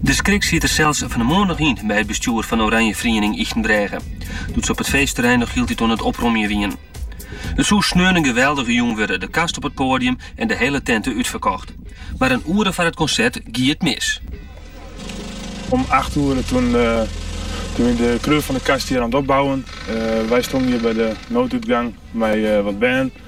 De skrik siet der fan 'e moarn sels noch yn by it bestjoer fan Oranjeferiening Ychtenbrêge, doe't se op it feestterrein noch hieltyd oan it opromjen wienen. It soe sneon in geweldige jûn wurde, De Kast op it poadium en de hiele tinte útferkocht. Mar in oere foar it konsert gie it mis. Om acht oere toen wie de crew fan De Kast hjir oan it opbouwen. Wy stongen hjir by de noodútgang mei wat bern.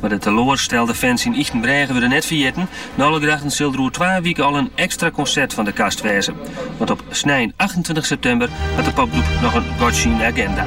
Mar de teloarstelde fans yn Ychtenbrêge wurde net ferjitten. Nei alle gedachten sil der oer twa wike al in ekstra konsert fan De Kast wêze. Want op snein achtentweintich septimber hat de popgroep noch in gatsje yn de agenda.